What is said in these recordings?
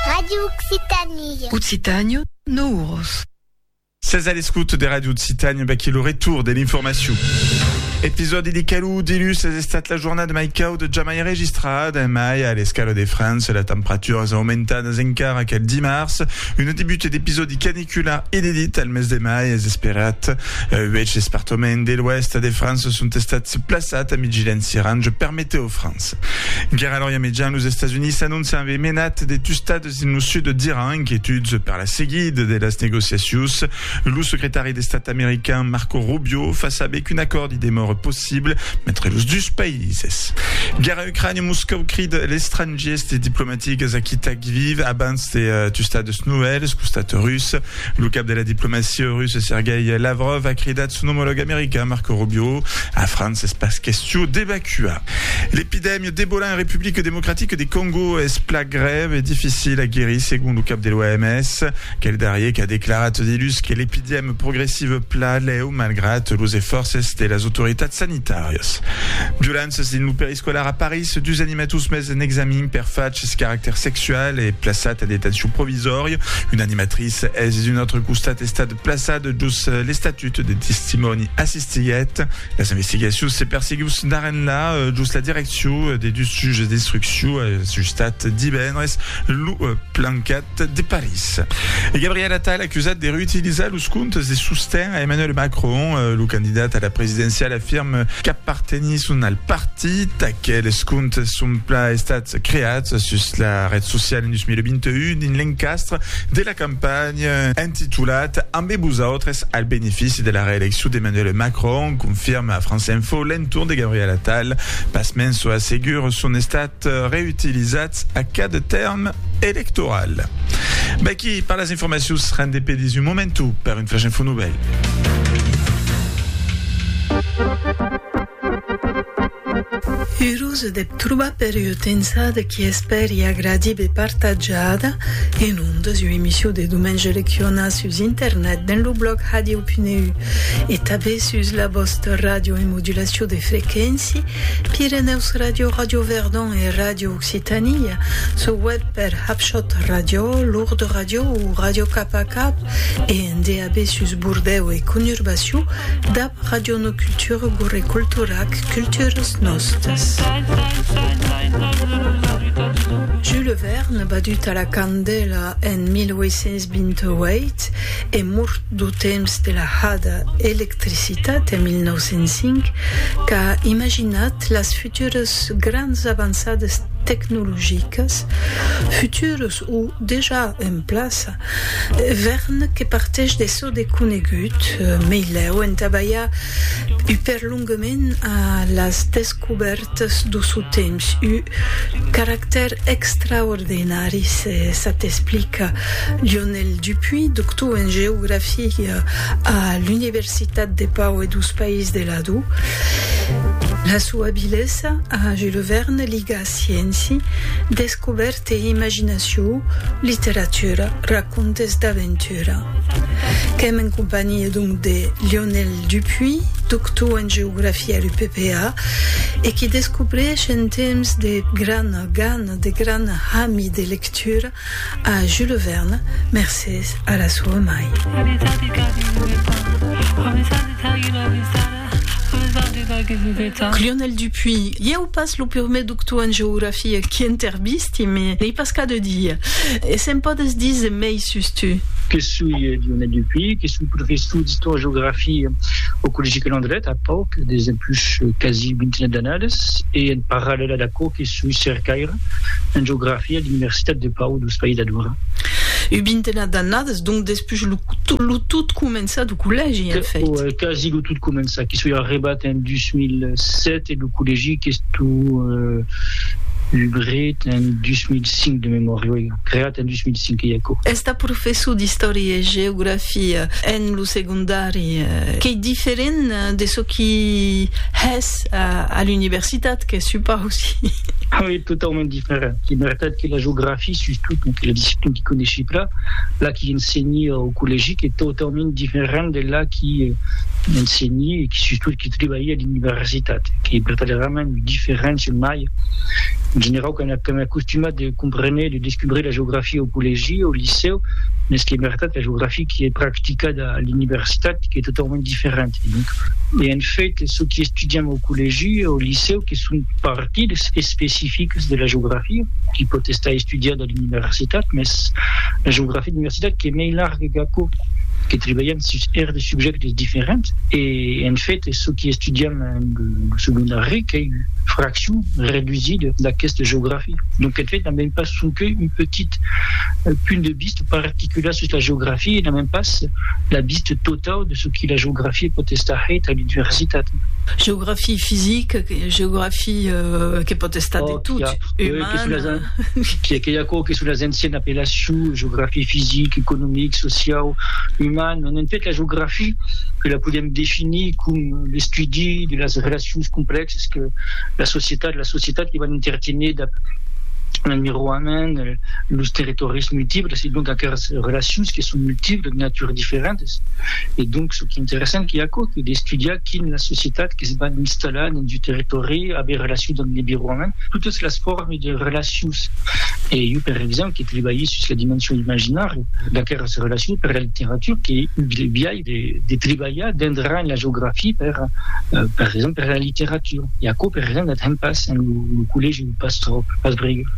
Radio Occitanie. Occitània, no uros. Sètz a l'escouta de Radio Occitània, vaquí lo retour de l'informacion. Episòdi de Calou Dilus es estat la jornada mai cauda jamai enregistrada en mai a l'escala de França. La temperatura es aumentadas encara quel dimars. Una debuta d'episòdi canicula Qu'una inedita al mes de mai es esperat. Uèch espartoments de l'Oèst de França son estats plaçats a migilha en Sirange per metèo França. Guèrra L'Orient Mejan, los Estats Units s'anóncian aver menat de tustats dins lo sud d'Iran, inquietuds per la seguida de las negociacions. Lo secretari d'Estat american Marco Rubio fa saber qu'un acòrd i demòra possible entre los dus païses. Guèrra Ucrània, Moscòu crida a l'estrangiers de diplomatics. Digues a qui t'ac vive abans de tustar deus novèls. Costat rus, lo cap de la diplomacia russa Sergei Lavrov a cridat son omològ american Marco Rubio a França es pas question d'evacuar l'epidèmia d'Ebola en Republica Democratica de Còngo es pla grèu e dificil a guerir segon lo cap de l'OMS quel darrier qu'a declarat dilhus que l'epidèmia progressiva pla lèu malgrat los esfòrces de las autoritats sanitàrias. Violéncias dins lo peristil. Scolar a París, dus animators mes en examin per fachs caractèr sexual e plaçat en detencion provisòria. Una animatrice es d'un autre costat estat plaçada jos l'estatut de testimòni assistiguèt. Las investigacions se perseguius d'arrenlà jos la direccion de dus juges d'instruccion ajustat divendres lo plancat. de París. E Gabriel Attal acusat de reutilizar los comptes de sosten a Emmanuel Macron. Lo candidat a la presidenciala afirme qu'apartenisson al partit. Aqueles comptes son plan estats creats sus la ret sociala en 2021 dins l'encastre de la campanha entitulat Ambe vosautres al benefici de la reeleccion d'Emmanuel Macron, confirma France Info l'entorn de Gabriel Attal. Pasmens, çò assegur son estat Èsat reutilizat a cada tèrm electoral. Vaqui per las informacions rendepedis un momentu per un flash info novèl. Urós deb trobar per ua tensada qui espèri agradib e partatjada en ondas ua emission de Domenge Leccionar sus internet dens lo blòg Hadieu.eu e tabé sus la vòsta ràdio en modulacion de frequéncia Pirenèus Radio, Radio Verdon e Radio Occitània, sul web per Hapshot Radio, Lourdes Radio o Radio Cap a Cap e en DAB sus Bordèu e conurbacion dab Radio No Cultura Gorre Culturac, Culturas Nostas. Jules Verne, badut a la candèla en 1828 e mort du temps de la hada electricitat en 1905 qu'a imaginat las futuras grands avançadas tecnologicas, futuras o dejà en plaça, vèrn que partèsh de çò de conegut, meilèu entà balhar ua perlonga. Longament a las descubèrtas do sò temps, ù caractèr extraordenari se s'atexplica Lionel Dupuy, doctor en geografia a l'Universitat de Pau e dos Païses de Ladó. La sua abilesa a Jules Verne liga scienci, descubèrtas, Tei imaginacion, literatura, racontes d'aventura. Qu'èm en companhia donc de Lionel Dupuy, doctor en geografia a l'UPPA e qui descobrèish en temps de grana gana, de gran hami de lectura a Jules Verne mercés a la soa mai. Lionel Dupuy, ieu pas lo purmé doctor en geografia qui intervisti, me n'ei pas cas de dir. E se'n podes díser mei sus tu? Que soi Lionel Dupuy, que soi professor d'Istòria-Geografia au Collègi Calandret, a pauc de dempús quasi vintina d'annadas, e en parallèla d'aquò que soi cercaire en geografia a l'Universitat de Pau, dous País d'Adora. Ua vintena d'annadas, donc, Push lo lo tot començar do collègi en fait. Ò è quasi lo tot començar que soi arribat en 2007 e lo collègi qu'esto ubret en 2005 de memòria oi creat en 2005 que i aquò. Estar professor d'istòria e geografia en lo segondari qu'ei diferent de çò qui hès a l'universitat que supausi. Oi totaument diferent. per que mertat que la geografia sus tot lo que la disciplina qui coneshi pla la qui ensenhi au collègi que totaument diferent de la qui ensenhi e qui sus tot qui tribalhi a l'universitat qui per tal era mèn diferent sul mai en generau que m'è acostumat de comprene de descubrir la geografia au collègi au licèu mès que mertat la geografia qui è practicada a l'universitat qui è totaument diferent e en fait çò qui estudiam au collègi au licèu que son Tips especifics de la geografia qui pòt estar estudiada a l'universitat, mès la geografia d'universitat qu'es mei larga qu'aquò, que tribalham sus R de subjèctes diferents e, en fait, çò qui estudiam en lo segondari qu'ei ua fraccion redusida d'aquesta geografia. Donc, en fait, n'am ben pas sonque un petit punt de vista particular sus la geografia e n'am ben pas la vista totau de çò qui la geografia pòt estar hèit a l'universitat. Geografia fisica. Geografia que pòt estar de tot, umana... Que i a aquò que son las ancianas apellacions, geografia fisic, economic, social, uman, en fait la geografia que la podèm definir com l'estudi de las relacions complèxas que la societat, las societats que van interténer dab l'enviroament, los territòris multiples e donc aqueras relacions que son multiples, de natura diferentas e donc çò qu'interessant qu'ei aquò, qu'ei d'estudiar quin las societats, que se van installar dins un territòri, aver relacion damb l'environment, totes las formes de relacions. E jo, per exemple, que trabalhi sus la dimension imaginària d'aqueras relacions per la literatura, qu'ei un biais de trabalhar dendrant la geografia per, per exemple, per la literatura. E aquò, per exemple, la tanh pas en lo collègi o pas tròp, pas bregeu.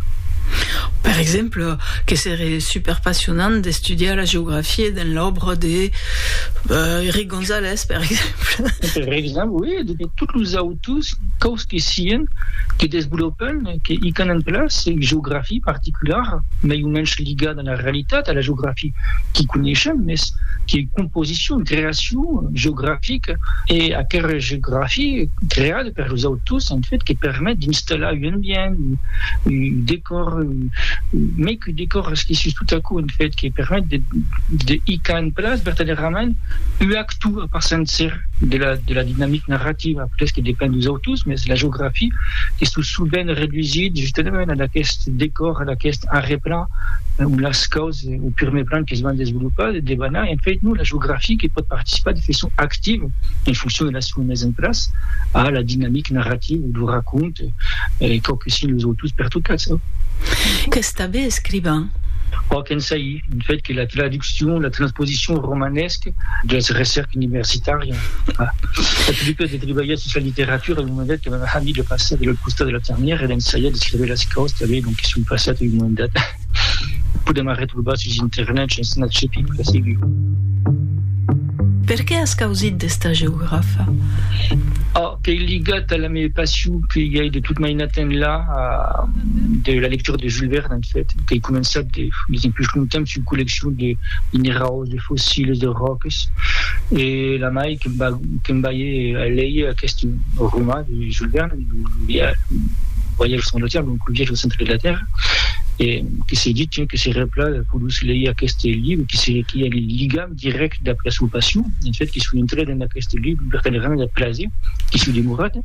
Per exemple, que seré super passionant d'estudiar la geografia dins l'òbra de Rigondeaux. Gonzalez, per exemple. Per exemple, oui, de tots los autors, quaus que sian, que desvolopan, que hican en place lei geografii particulara, mei o mensh ligada a la realitat, a la geografii qui coneishem, mes que composicion, creacion geografica, e aquera geografii creada per los autors, en fait, que permet d'installar un ambient, un, decòr, mei que decòr esquisís tot a coup un fet que permet de de hicar en place vertadèrament ua actu a part sencer de la de la dinamic narrativa après que depend dus autors mès la geografia que sou sovent redusit justament ad aquest decòr ad aquest arreplan ont las caus au purmei plan que se van desvolopar debanant en fait non la geografia que pòt participar de façon activa en foncion de la son mès emplàç a la dinamic narratiu du racont, e quò que si'n los autors pertocats. Qu'es tanben escrivan. Ò qu'ensai, en fait, que la traduccion, la transposicion au romanesc deth recèrc universitari. Eth prumèr de trebalhar sus la literatura en un moment dat que m'avèm amís de passar de l'autre costat de la ternièra e d'ensaiar d'escréver las causes tanben, donc que son passat en un moment dat. Podèm arretrobar sus internet, ja es una chefia pura segur. Per qué as causit d'esta geografa? A, qu'ei ligat a la me passion que i ai de tot mainat enlà de la lectura de Jules Verne, en fait, qu'ei començat de, diguem, pus longtemps sus colleccion de minerau, de fossiles, de ròques, e la mai que me balhe a leir aqueste roman de Jules Verne, Le voyage au centre de la terre, donc Le viatge au centre de la terre, e que se dit, tiens, que seria pla de poder leir aqueste libre, que se qu'i a un ligam dirèct dab la sua passion, en fait, que soi entrat en aqueste libre per tal rang de plaser, qu'i soi demorat,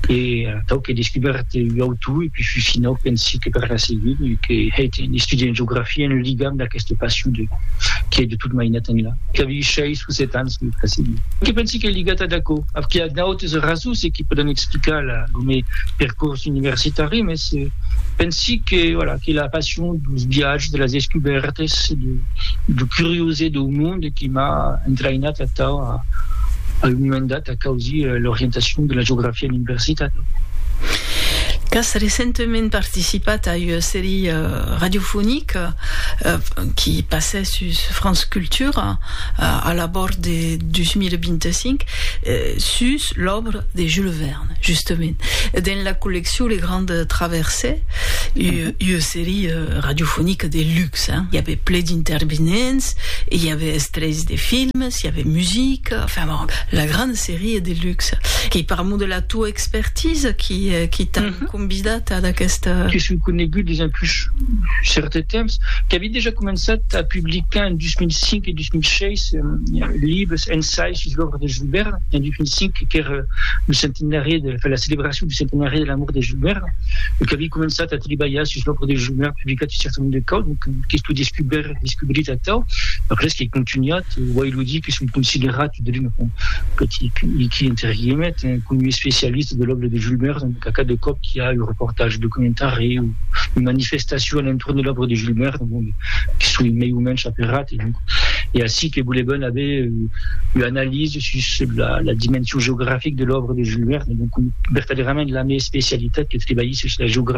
e atau qu'è descubèrt ua autor, e pus finau pensi que per la seguir, que hè, tiens, estudiar geografia en ligam d'aqueste. Que passion de qué de tot mainat enlà. Qu'avi seis o set ans lo precedit. Que pensi qu'ei ligat ad aquò. Qu'i a d'autes rasons e qui pòdon explicar la lo me percors universitari mes pensi que voilà que la passion dos viatges de las descubèrtes de de curiosé deu monde qui m'a entraïnat atau a un moment dat. Causi l'orientacion de la geografia en universitat. Qu'as recentament participat a ua serie radiofonica qui passè sus France Culture a l'abòrd de 2025 sus l'òbra de Jules Verne, justament, dens la colleccion Les Grandes Traversées, ua serie radiofonica de luxe, i avè ple d'intervenents e i avè extrèits de films. s'i avè musica, enfin bon, la gran serie de luxe. Qu'i parlamon de la tua expertise, qui, qui t'a convidat ad aquesta. Que s'un conegut dejà pus cèrte temps, qu'avi dejà començat a publicar en 2005 e 2006 libres, ensais sus l'òbra de Jules Verne, en 2005 qu'èra lo centenari de, enfin la celebracion du centenari de la mòrt de Jules Verne, e qu'avi començat a tribalhar sus l'òbra de Jules Verne, publicat un cèrte nombre de causes, donc qu'esto descubèr. descobrit atau, res qu'ei contunhat, uèi lo dic, son considerat de l'un petit hiqui entre guillemets, coma un especialista de l'òbra de Jules Verne, donc a cada còp qu'i a un reportatge documentari o una manifestacion a l'entorn de l'òbra de Jules Verne, bon, que soi mei o mensh aferrat, e donc ei ací que volevan aver ua analisa sus la dimension geografica de l'òbra de Jules Verne, e donc vertadèrament la mea especialitat que tribalhi sus la geografia.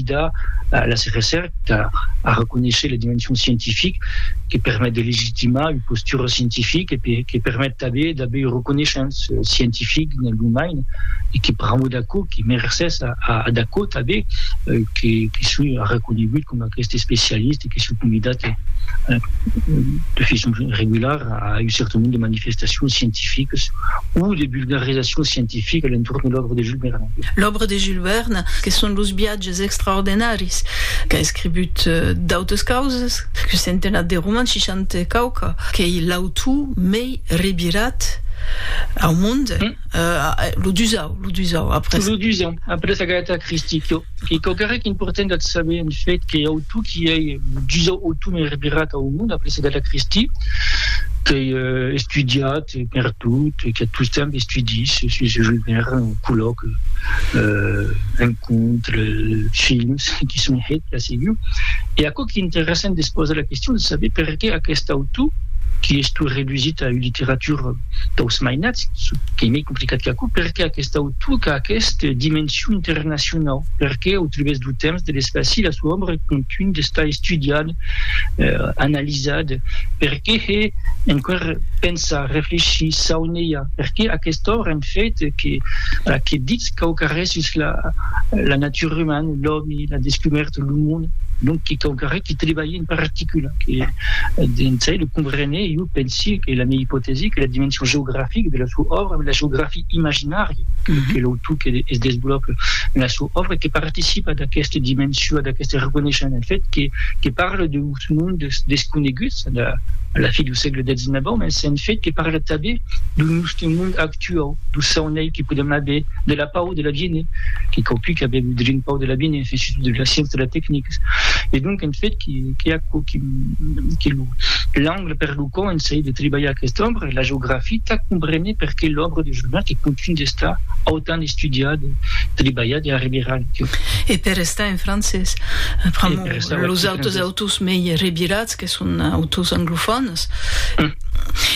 consolidar las recèrca, arreconéisher la dimension scientifique que permet de legitimar ua postura scientifique e que permet tanben d'aver ua reconeishance scientifique dins lo main e que pr'amor d'aquò que mercés ad aquò tanben que soi arreconegut coma aqueste especialista e que soi convidat de façon regulara a un certain nombre de manifestacions scientifiques o de vulgarisacions scientifiques a l'entorn de l'òrdre L'òbra de Jules Verne, que son los viatges extraordenaris, qu'a escrivut d'autes causes, qu'un centenat de romans, seixanta e quauqua, qu'ei l'autor mei revirat au monde, lo dusau, lo dusau après. Lo dusau, après Agatha Christie, que qu'ei quauquarrec important d'ath saber, en fait, qu'ei autor qui ei lo dusau autor mei revirat au monde, après Agatha Christie, qu'ei estudiat, Quiet, perdut, e que tostemp estudís sus un jogaire, un collòc, un cònt, films, que son hèt ja segur. E aquò qu'ei interessant de se posar la question de saber perqué aqueste autor, qui es tot redusit a un literatur daus mainats, çò qu'ei mei complicat qu'aquò, perqué aqueste autor qu'a aqueste dimension internacionau, perqué au tribèrs dau temps, de l'espaci, la soa òbra contunh d'estar estudiada, analizada, perqué hè enqüèr pensar, reflechir, saunelhar, perqué aquesta òbra en fait que la que ditz quauquarrés sus la la natura umana, l'òmi, la descubèrta, lo monde, donc que quauquarrés que trebalhe en particular, que dins ei lo comprenè, jo pensi que la mia ipotèsi que la dimension geografica de la sua òbra, la geografia imaginària que l'autor que es desvolòpa en la sua òbra, que participa d'aquesta dimension, d'aquesta reconeishan en fait que que parla de son mondes desconeguts a la fi dau sègle xix, mas en fait que parla tanben dau nòste mond actuau, dau saunei que podèm aver, de la pau de l'abine, que quauqui qu'a avèu drin pau de l'abine, fins i tot de la sciença de la tecnica. E donc, en fait, qu'ei aquò que lo l'angle per lo quau ensai de tribalhar aquesta òbra e la geografia tà compréner perqué l'òbra de Julian que contunh d'estar autant estudiada, tribalhada e arriberada. E per estar en francés, pr'amor. los autres autors mei revirats que son autors anglofònes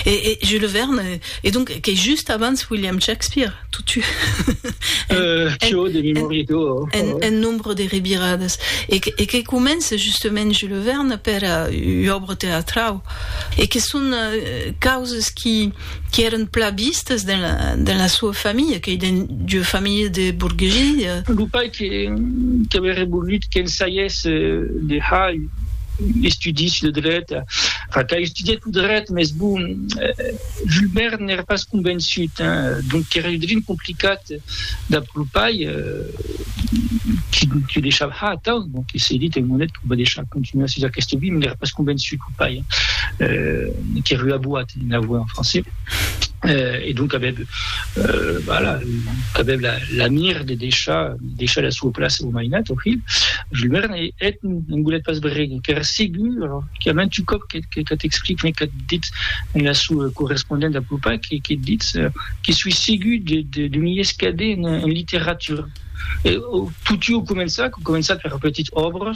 e Jules Verne e donc qu'es just abans William Shakespeare totu un nombre de reviradas e que comença justament Jules Verne per ua òbra teatrau e que son causes qui qui èren plan vistes dens la soa familha, qu'ei dens ua familha de borguesia. Lo pair qu'auriá volut qu'el saies de hèr estudis de dret, enfin qu'a estudiat lo dret, mès bon, Jules Verne n'èra pas convençut, donc qu'èra udrin complicat dab lo pair, qui deishava, atau, bon, que se dit, en monet, que o va deishar continuar sus aquesta via, mès n'èra pas convençut. pair que rue à boat en avouer en français euh, et donc avèb euh, voilà qu'avèb la, la mire de deixar deixar la sua place au mainat au fil je lui merne et, et un boulet pas bregue per segur alors qu'il y a même tu cop que, que, que t'explique mais que dit en la sua correspondente à Poupa que, que dit euh, que suis segur de, de, de m'y escader en, en littérature et, au, tout au començat, au començat per petites obres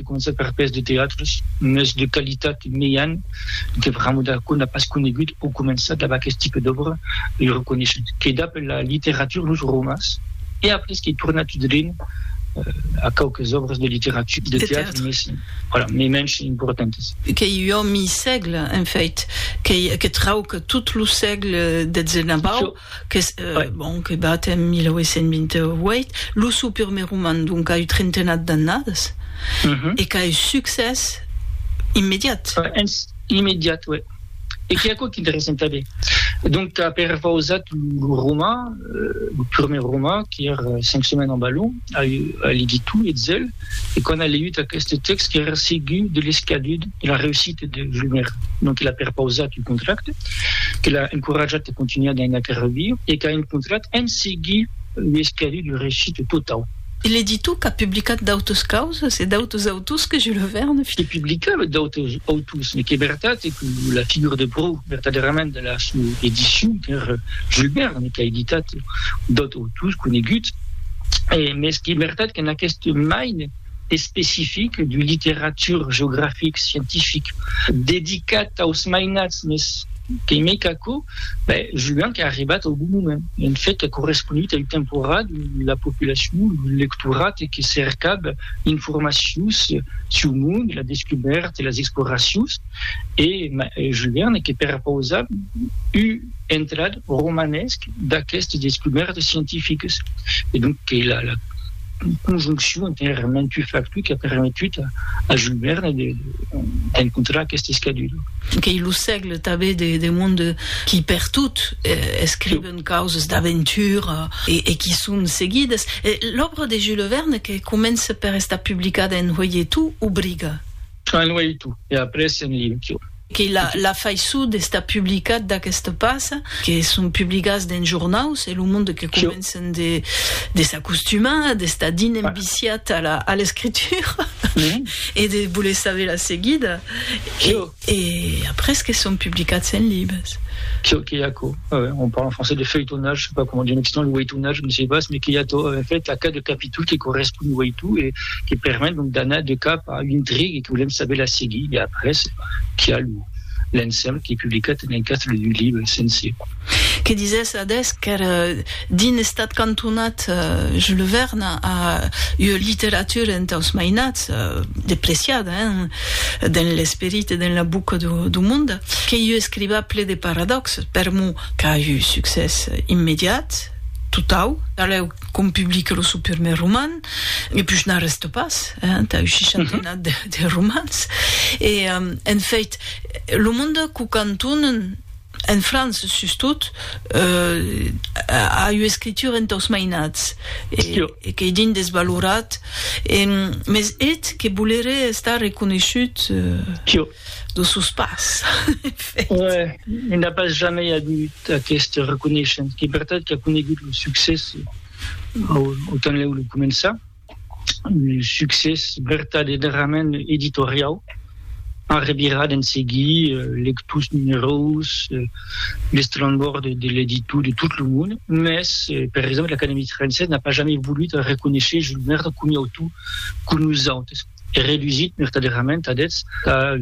De concerts per pes de teatres, mès de qualitat mejan, que Rameau d'Arco n'a pas conegut au començar dab aqueth tipe d'òbra, ei reconeishut qu'ei dab la literatura los romans e après qu'ei tornat drin a quauques òbras de literatura, de teatre, mès voilà, mei mensh importantes. Qu'ei ua mi sègle, en fait, que trauc tot lo sègle detzena bau. qu'es eth bon que bat en 1828, lo sou purmèr roman d'ont qu'a ua trentenat d'annadas, e qu'a ua succès immediat. Immediat, ué. E qué aquò qu'interessant tanben, donc qu'a perpausat lo roman, lo purmèr roman, qu'ère Cinq semaines en ballon, a ligit tu e zel, e quan a leiut aqueste tèxt qu'èra segur de l'escadut de la reussita de Julmer, non que l'a perpausat un contracte, que l'a encoratjat a continuar dins aquel reviu e qu'a encontrat en seguir ua escadut de reussita totau. E ligit tu qu'a publicat d'autus causes e d'autus autors que Jules Verne? Que publicava d'autus autors, me qu'è vertat que la figura de pròu vertadèrament de la sua edicion qu'èra Jules Verne, qu'a editat d'autus. tous coneguts, mès qu'ei vertat qu'en aqueste maine especific du literature geografic scientific dedicat aus mainats, mès qu'ei mei qu'aquò, ben, jugan qu'ei arribat au bon moment, en fait qu'ei corresponut au temporat d'ont la populacion, lo lectorat que cercab informacions suu monde, la descubèrta, las exploracions. e Julien que perpausa un entrat romanesc d'aquestes descubèrtas scientificas e donc que la conjonccion entre un rarament un factor qu'a permetut a Jules Verne d'encontrar aqueste escadura. Qu'ei lo sègle tanben de monde qui per tot escriben causas d'aventura e qui son seguidas. L'òbra de Jules Verne que comença per estar publicada en hoileton obriga. En Waitu e après en Liukiu. Que la faiçut d'estar publicat d'aqueste pas, que son publicats dens jornaus, e lo monde que comencen de s'acostumar, d'estar dins enviciat a l'escritura e de voler saber la seguida, e après que son publicats en libres. Çò que i a aquò, on parle en français de feuilletonnage, je sais pas comment dire en occitan, le waitunage, je ne sais pas, mais que i a tot, en fait, a cada capítol que correspond un waitu e. que permet donc d'anar de cap a un trig e que volem saber la seguir e après qu'i a lo l'ensemble qui est publicat en encastre d'un libre sencer. Que disès adés qu'èr dins estat cantonat Jules Verne a ua literatura entaus mainats depreciada dens l'esperit e dens la boca dau monde, qu'ei un escrivà ple de paradòxes per mot qu'a un succès immediat, totau, alèu qu'om publique lo seu prumèr roman, Me pus n'arrèsto pas, eh, entà un shishatena de, de romans. E, en fèit, lo monde qu'o cantonen, en França sustot, eh, a ua escritura entà'us mainats, e, e qu'ei dins desvalorat, e, mès eth que boleré estar reconeishut, eh, dosús pas, en fèit. Uèi, i n'a pas jamei agut aqueste reconeishent, qu'ei vertat qu'a conegut lo succès, autant lèu lo començar, un succès vertadederament editoriau, a revirar d'en seguir lectors numerós, l'estrambòrd de l'editor de tot lo mond, mès per exemple l'Acadèmie Française n'a pas jamais volut reconéisher Jules Verne comi autor que nosautes e redusit vertadederament a dètz la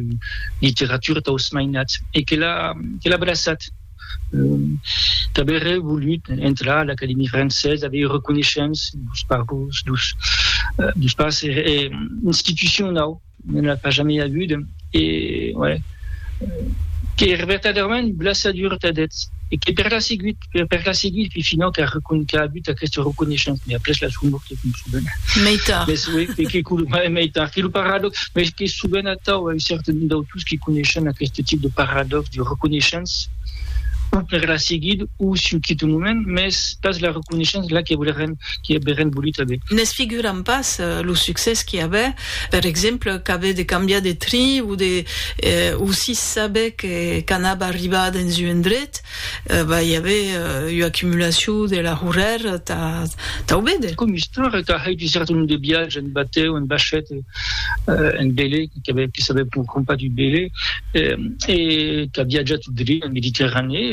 literatura taus mainats e que l'a braçat. qu'avère volut entrar a l'Academia Francesa, avei reconeishens dos parents, dos dos pas e e institucionau, ne l'a pas jamei avut e ouais qu'ère vertadèrament un blessadur tà deth e que per la seguit, per la seguit, finau qu'a recon qu'a avut aqueste reconeishens, mès après la sua mòrt. Meitar. Mes, oui, e que colomai meitar, que lo paradox, mes que sovent atau un certain d'autors qui coneishen aqueste tip de paradox de reconeishance, ou per la seguid, ou siu quit un moment, mes pas la reconeishance la que voleren, qui averen volut aver. Nes figuram pas lo succès qui aver, per exemple, qu'aver de cambiar de trin ou de, ou sis saber que qu'anava arribar dens un endret, Bah, i avè ua acumulacion de laurèr tà tau véder. Com istòria, tà hèit un cèrten nombre de viatges en batèu, en bachèt, en velè, que s'avè pòur crompar du velè, e qu'a viatjat drech en Mediterranèa.